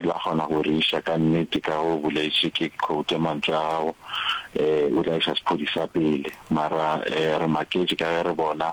La kgona go re iša ka nnete ka ge o boletše, ke quote mantšu a gago, o tla iša sephodisa pele. Mara re maketše ka ge re bona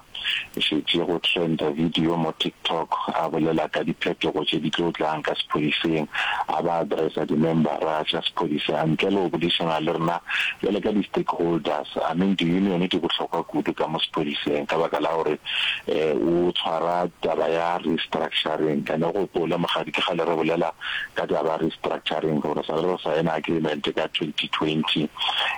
e šetše go trenda video mo TikTok a bolela ka diphetogo tše di tlo tlang ka sephodiseng, a ba addressa dimembara tša sephodisa ntle le go bodišana le rena bjale ka di-stakeholders. I mean, di-union di bohlokwa kudu ka mo sephodiseng ka baka la gore o tshwara taba ya restructuring and o gopole mogadi ke kgale re bolela ka taba ya restructuring gore sa le re sign agreement ka 2020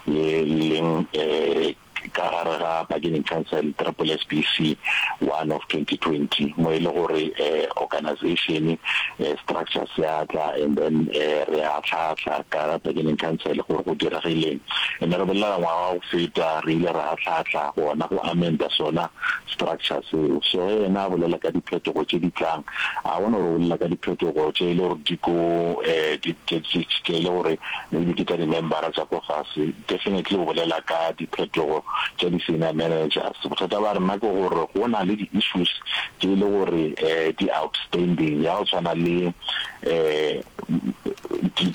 ye leng um ka gare ga bargaining council triple s b c one of 2020 mo e le gore um organization um structure se atla and then um re a tlhatlha ka bargaining council gore go diragileng Ene re bolela ka ngwaga wa go feta re ile ra ahlaahlaa gona go amenda sona structure seo. So ge ena a bolela ka diphetogo tše di tlang, a bona gore o bolela ka diphetogo tše e le gore di ko tše e le gore maybe ke tša di-member-a tša ko fase, definitely o bolela ka diphetogo tša di-senior managers. Bothata ba rena ke gore go na le di-issues tše e le gore di outstanding ya go tshwana le um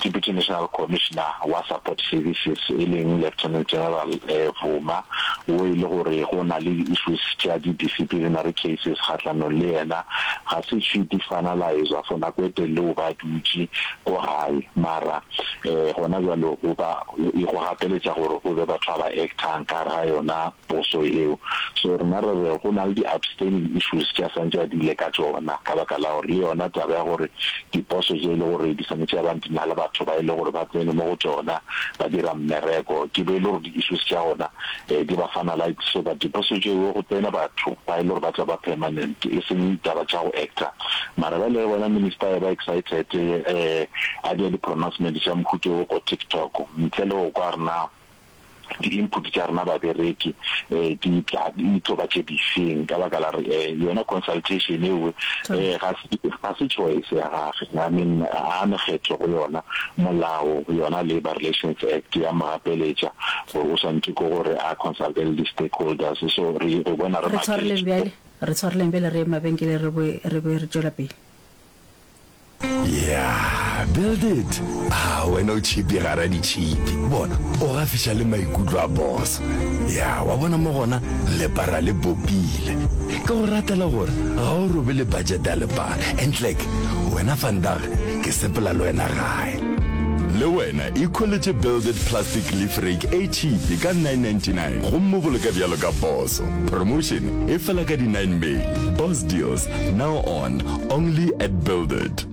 Deputy National Commissioner wa Support Services e leng Lieutenant General Vuma wo e le gore go na le di-issues tša di-disciplinary cases kgahlanong le yena, ga se tšhwiti finalizer for nako e telele o ba dutše ko gae mara um gona bjale go ba go gapeletša gore go be batho ba ba actang ka gare ga yona poso eo. So rena re re go na le di outstanding issues tše a santše a dile ka tšona ka baka la gore le yona taba ya gore diposo tše e le gore di swanetše ya bang di na le batho ba e le gore ba tsene mo go tšona ba dira mmereko ke be e le gore di issues tša gona um di ba finalise so that diposo tšeo go tsene batho ba e le gore ba tla ba permanent e seng taba tša go actor mara ba le bona minister e ba excited um a dira di-pronouncement tša mohuto go TikTok ntle le go kwa rena di input tša rena babereki eh di tla di tlo ba tše difeng ka baka la re eh yona consultation eo eh ga se ga se choice ya gage i mean a ne kgetho go yona molao yona labor relations act ya mogapeletša gore o swantse go gore a consult le di stakeholders so re go bona re tshwareleng bjale re tshwareleng bjale re mabenkele re bo re bo re tšwela pele Yeah, build it. Ah, wena o chipi gara di chipi. Bona, o ga fiša le maikutlo a boss. Yeah, wa bona mo gona le para le bopile. Ke go ratela gore ga o robe le budget ya lepara. And like, wena fandag ke sepela le wena gae. le wena ikholetše builded plastic leaf rake e cheape ka 999 gomme boloka bjalo ka poso promotion e fela ka di-9 may boss deals now on Only at Build It.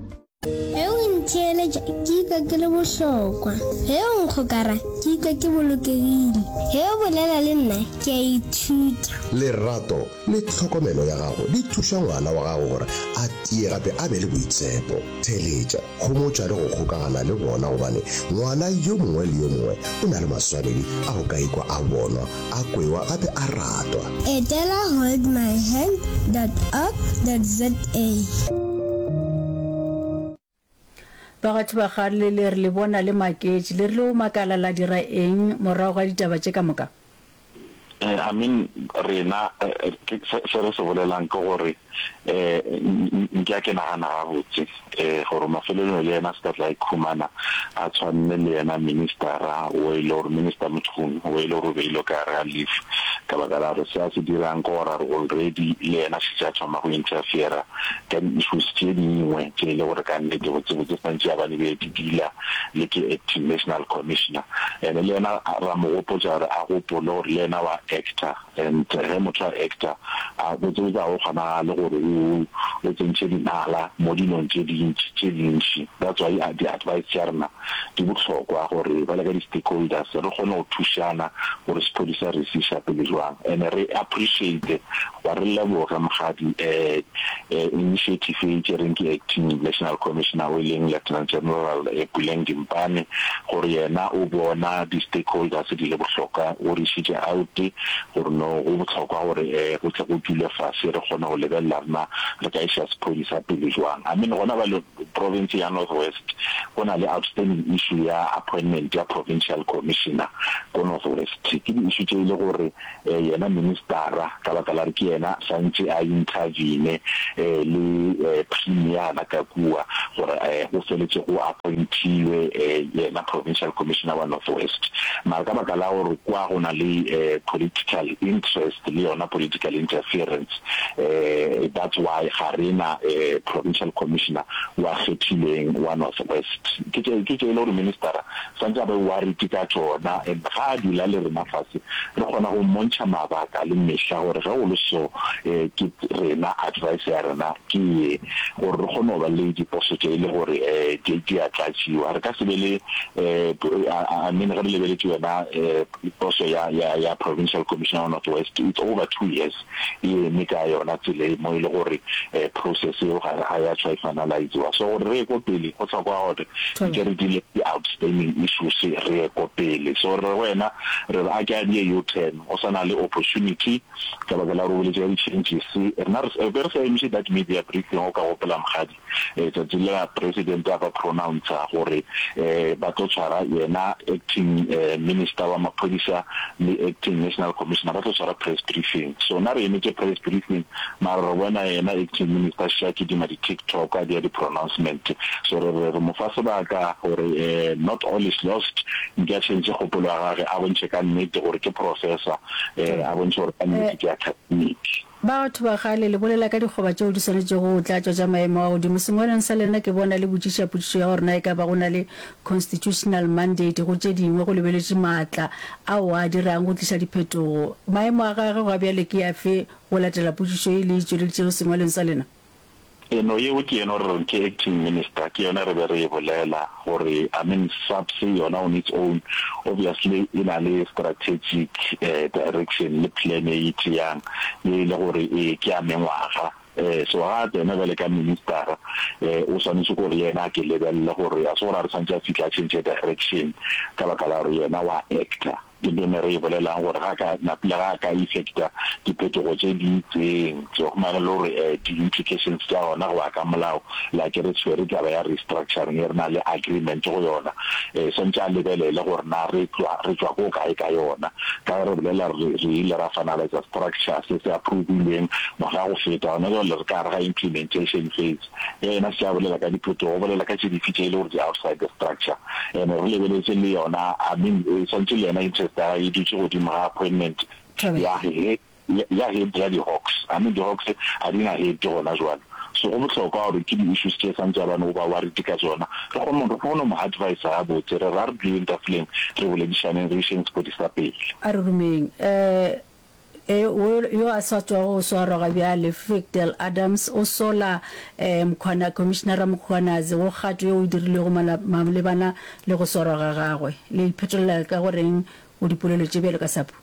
Ge o ntheeletša ke ikwa ke le bohlokwa. Ge o nkgokara ke ikwa ke bolokegile. Ge o bolela le nna ke a ithuta. Lerato le tlhokomelo ya gago di thuša ngwana wa gago gore a tie gape a be le boitshepo. Theeletša. Homotša le go kgokagana le bona gobane ngwana yo mongwe le yo mongwe o na le maswanedi a go ka ikwa a bonwa, a kwewa gape a ratwa. Etela holdmyhand dot org dot za. Bagatho ba ga le le re le bona le maketše, le rile o makala la dira eng morago ga ditaba tše ka moka? Eh, I mean rena eh, ke- se se re se bolelang ke gore eh n- nke a ke nagana gabotse eh gore mafelelong le yena se ka tla ikhumana a tshwanne le yena ministera o e le gore minister motšhoni o e le gore o beile ka gare ga leaf ka baka la gore se a se dirang ke gore a re already le yena se tša thoma go interfera ka di-issues tše dingwe tše e le gore ka nnete botsebotse santse a ba ne be di dila le ke acting national commissioner and le yena ra mo gopotša gore a gopole gore le yena wa actor and ge motho a actor a botse botse a go kgonagale gore o tsentšhe dinala mo dilong tše dintši tše dintši that's why di advice tša rena di bohlokwa gore ba le ka di stakeholders re kgone go thušana gore sephodisa re se isa pele jwang and re appreciate Ba re leboga Mokgadi um initiative e e tšereng ke Acting National Commissioner o e leng Lieutenant General Puleng Dimpane gore yena o bona di-stakeholders di le bohlokwa. O re išitše out gore no go bohlokwa gore um go tle go dulwe fase re kgone go lebelela gore na re ka iša sephodisa pele jwang. I mean gona bjale Province ya North West go na le outstanding issue ya appointment ya Provincial Commissioner ko North West. Ke di issue tše e le gore yena ministara ka baka la re ke yena santše a intervene le Premier la ka kua gore go feletše go appointilwe yena Provincial Commissioner wa North West. Mara ka baka la gore kua go na le political interest le yona political interference um that's why ga re na um provincial commissioner wa kgethilweng wa North West. Ke tše ke tše e le gore ministera santse a be worried ka tšona and ga a dula le rena fase re kgona go mmontšha mabaka le mehla gore ge go le so um ke rena advice ya rena ke ye gore re kgone go ba le diposo tše e le gore um di di a tlatšiwa re ka se be le um I I mean ge re lebeletse yona um poso ya ya ya provincial commissioner wa North West it's over two years. e eme ka yona tsela e mo e le gore process eo ga ga ya tshwa e finalize-wa. So gore re ye ko pele go tlhokwa gore nke re dile di-outstanding issues re ye ko pele. So re wena re re a ke a die U-turn go sa na le opportunity ka baka la gore o boletse ka di-changes. Rena re be re sa emiše that media briefing o ka gopola mokgadi. tšatši le la president a ba pronouncer gore ba tlo tshwara yena acting minister wa maphodisa le acting national commissioner ba tlo tshwara press briefing so na re emetše press briefing mara re bona yena acting minister sha kidima di tiktok a dia di pronouncement so re re re mo fa sebaka gore not all is lost nke a change kgopolo ya gage a bontšhe ka nnete gore ke professor a bontšhe gore ka nnete ke academic Batho ba kgale, le bolela ka dikgoba tšeo di swanetšego go tlatšwa tša maemo a godimo. Sengwalweng sa lena ke bona le botšiša potšišo ya gore na e ka ba go na le constitutional mandate go tše dingwe go lebeletše maatla ao a dirang go tliša diphetogo. Maemo a gage gwa bjale ke afe go latela potšišo ye le e tšweleditšego sengwalweng sa lena? Eno yeo ke yeno re reng ke acting minister, ke yone re be re e bolela gore I mean SAPS yona on its own obviously e na le strategic direction le plan e e tšeang ye e le gore ee ke ya mengwaga so ga a tsena bjale ka minister o swanetše gore le yena a ke lebelele gore a se gore a re santse a fitlha a change direction ka baka la gore yena wa actor. Ke bene re e bolelago gore ga ka na pula ga ka effecta diphetogo tše di itseng tse go mane le gore eh di implications tša gona go ya ka molao like re tshwere taba ya restructuring e re na le agreement go yona eh sentse a lebelele gore na re tšwa re tšwa ko kae ka yona ka re bolela re re ile ra finalize structure se se approvilweng ngwaga go feta gona jwale re ka re ga implementation phase Ge yena se a bolela ka diphetogo, o bolela ka tše dife tše e le gore di outside the structure? And-e re lebeletse le yona, I mean, e swantše le yena interest ya gage e dutše godimo ga appointment ya he, ya head ya di-Hawks. I mean, di-Hawks ga di na head gona jwale. So go bohlokwa gore ke di-issues tše swantše a ba no ba worried ka tšona, re kgone go, re kgone go mo adviser gabotse. Re re a re duleng tafoleng, re boledišaneng, re išeng sepodisa pele. A re romeng. Um E, wo yo a sa tswago go swarwa ga bjale, Frikdal Adams, o sola e, Mkhwana, Khomišinara Mkhwanazi go kgato yeo e dirilwego mala, malebana le go swarwa ga gagwe. Le iphetolela ka go reng go dipolelo tše bjalo ka Sapu?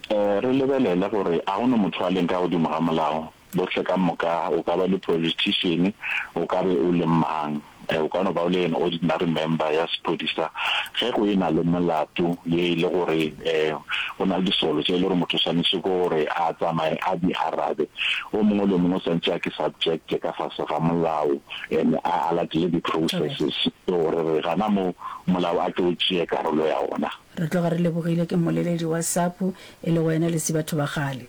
E, re lebelele gore a go no motho a leng ka godimo ga molao. Bohle ka moka, o ka ba le politišene, o ka be o le mang, o ka no ba o le an ordinary member ya sephodisa, ge go e na le molato ye e le gore go na le disolo tše e le gore motho o swanetše ke gore a tsamaye a di arabe, o mongwe le o mongwe o swanetše a ke subject ka fase ga molao and a a latele di processes tšeo re re gana moo molao a tle o tšee karolo ya ona. Re tloga re lebogile ke mmoleledi wa SAPU e le wena le Sibatho ba kgale.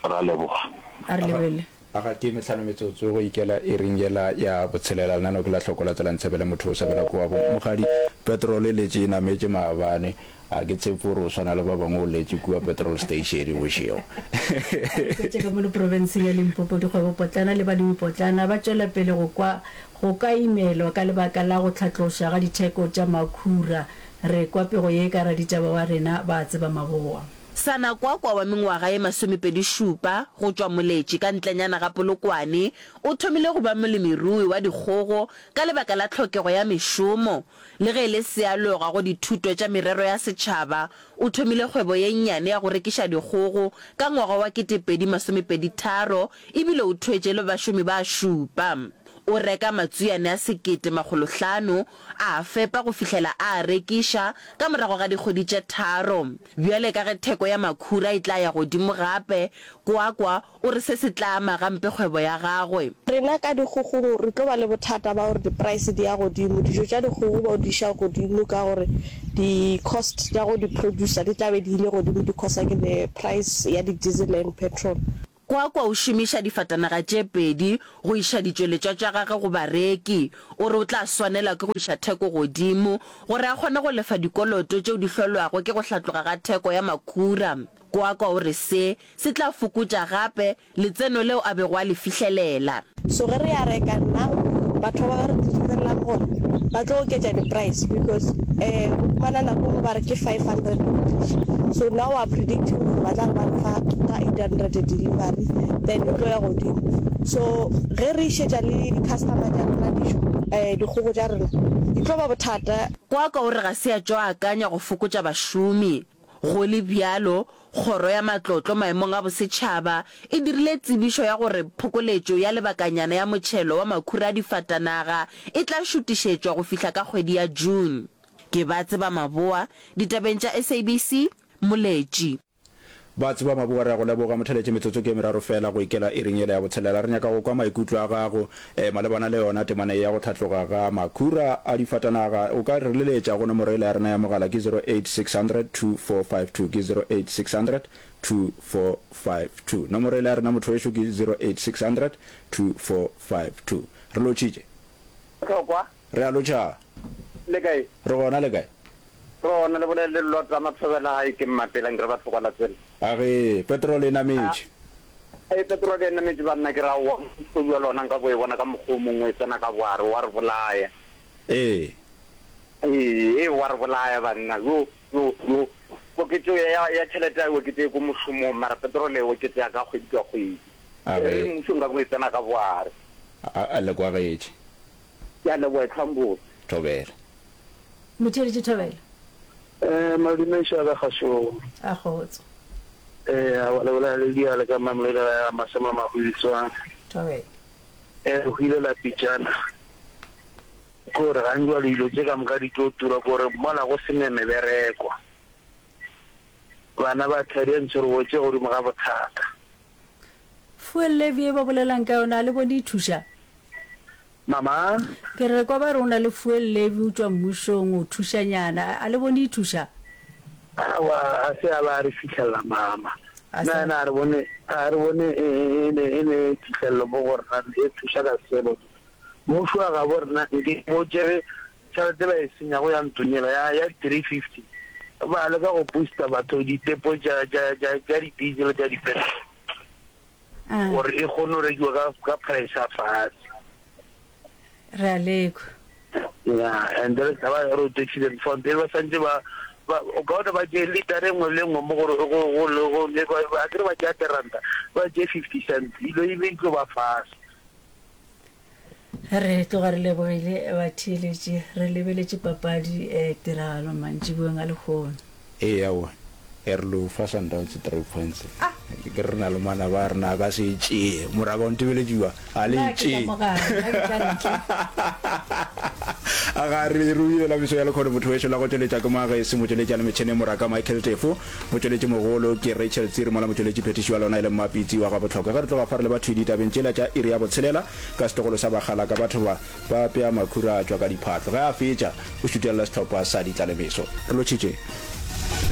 Ra leboga. A re lebelele. Aga ke metlhano metsotso go ikela iring yela ya botshelela. Lenaneo ke la Hloko la Tsela Ntshabela motho o sabela kua bo Mogadi. Petrol e letše e nametše maabane. A ke tshepe gore o swana le ba bangwe o letše kua petrol station bošego. Re hwetše ge mo leprobenseng ya Limpopo dikgwebopotlana le balemipotlana ba tšwela pele go kwa go ka imelwa ka lebaka la go tlhatloša ga ditheko tša makhura. Re kwa pego ye ka raditaba wa rena ba Tsebamaboa. Sanakwakwa wa mengwaga ye masomepedišupa go tšwa Moletši ka ntlenyana ga Polokwane o thomile go ba molemirui wa dikgogo ka lebaka la tlhokego ya mešomo. Le ge e le sealoga go dithuto tša merero ya setšhaba, o thomile kgwebo ye nnyane ya go rekiša dikgogo ka ngwaga wa ketepedi masomepeditharo e bile o thuetše le bašomi ba šupa. O reka matswiane a sekete makgolo hlano A a fepa go fihlela a a rekiša ka morago ga dikgwedi tše tharo. Bjale ka ge theko ya makhura e tla ya godimo gape, Kwakwa o re se se tla ama gampe kgwebo ya gagwe. Rena ka dikgogong re tlo ba le bothata ba gore dipraese di ya godimo. Dijo tša dikgogo ba di iša godimo ka gore di-cost tša go di producer di tla be di ile godimo di-causer ke the price ya di-diesel and petrol. Kwakwa o šomiša difatanaga tše pedi go iša ditšweletšwa tša gagwe go bareki. O re o tla swanelwa ke go iša theko godimo gore a kgone go lefa dikoloto tšeo di hlolwago ke go hlatloga ga theko ya makhura. Kwakwa o re se, se tla fokotša gape letseno leo a bego a le fihlelela. So ge re areka nna batho ba ba re direlang gore ba tlo oketša di price because eh go fumana nako go ba re ke 500 so now are predicting gore ba tla ba re fa ka 800 delivery then e tlo ya godimo so ge re išetša le di customer tša rona dijo eh dikgogo tša rena di tlo ba bothata Kwakwa o re ga se a tšo akanya go fokotša bašomi. Go le bjalo, Kgoro ya Matlotlo Maemong a Bosetšhaba e dirile tsebišo ya gore phokoletšo ya lebakanyana ya motšhelo wa makhura a difatanaga e tla šutišetšwa go fihla ka kgwedi ya June. Ke ba tseba maboa, ditabeng tša SABC, Moletši. Ba tseba maboa, re a go leboga. Motheletše, metsotso ke e meraro feela go ikela iring yela ya botshelela. Re nyaka go kwa maikutlo a gago. Malebana le yona temana ye ya go hlatloga ga makhura a difatanaga, o ka re leletša go nomoro yela ya rena ya mogala ke 0860024520, ke 0860024520. Nomoro yela ya rena motho wešo ke 0860024520. Re lotšitše. Bohlokwa Re a lotšha. Le kae? Re gona, le kae? Re gona, le bolele le Lot a mathobela gae ke mmapela, nke re ba tlhoka la tsela. A ge petrol e nametše? Ee, petrol e nametše banna, ke re aowa, kgodu ya lona nka bo e bona ka mokgwa o mongwe, e tsena ka boare, wa re bolaya. Ee. Ee, ee, wa re bolaya banna. Yo, yo, yo, oketšo ya, ya tšhelete a e oketše ko mošomong, mara petrol e oketšega ka kgwedi ka kgwedi. A ge. Ee, mmušo nka bo e tsena ka boare. A, a le kwagetše. Ke a leboga etlhwang botse. Thobela. Motheeletši Thobela. Eh, madume ešo ya ka kgašong. A kgotso. Eh, a le bolela le Ledia le ka Mamelodi la ya Masema Mahutswa. Thobela. Eh, go ile la pitšana. Kore ga njwa dilo tše ka moka di tlo tura kore mola go sene mebereko. Bana ba tlhadiantšhe re wetše godimo ga bothata. Fuel levy e ba bolelang ka yona a le bone e thuša? Mama? Ke re kwa ba re o na le fuel levy o tšwa mmušong o thušanyana a le bone e thuša? Awa a se a ba re fitlhelela mama. A sa- Na na a re bone a re bone e e- e le e le phihlello mo go rena e thuša ka sebo. Mmušo wa gabo rena nke o tšere Tšhelete e ba e senyago ya ntunyela ya, ya di 350. Ba leka go booster batho ditepo tša, tša, tša, tša di-diesel le tša di-petrol Ah, gore e kgone go rekiwa ka, ka price ya fatshe. re a lekwa. Yeah, and then ka ba road accident fund e ba santse ba ba o ka bona ba tše liter engwe le engwe mo gore go go le go le ba ba kere ba tšea teranta ba tše 50 cents ilo e be tlo ba fase Re tloga re lebogile batheeletši, re lebeletše papadi e tiragalo mantšiboweng a lehono. Ee, aowa, ya re lo fa Sundowns three points. Ah, ke re re na le mwana ba rena a ka se e tšee. Moraka o ntebeletše kua, a le e tšee. A ga re e rubile la meso ya lekgono motho wešo la go tšweletša ke Magesi, motšweletši a le metšheneng moraka Michael Tefo. Motšweletši mogolo ke Rachel Tsiri mola motšweletši phethiši wa lona e le Mma Pitsi wa Gabotlhokwa. Ge re tloga fa re le bathwii ditabeng tšela tša iri ya botshelela ka setlogolo sa Bagalaka batho ba ba apea makhura a tšwa ka diphatlo. Ge a fetša o šutelela sehlopha sa ditlalemeso. Re lotšhitše.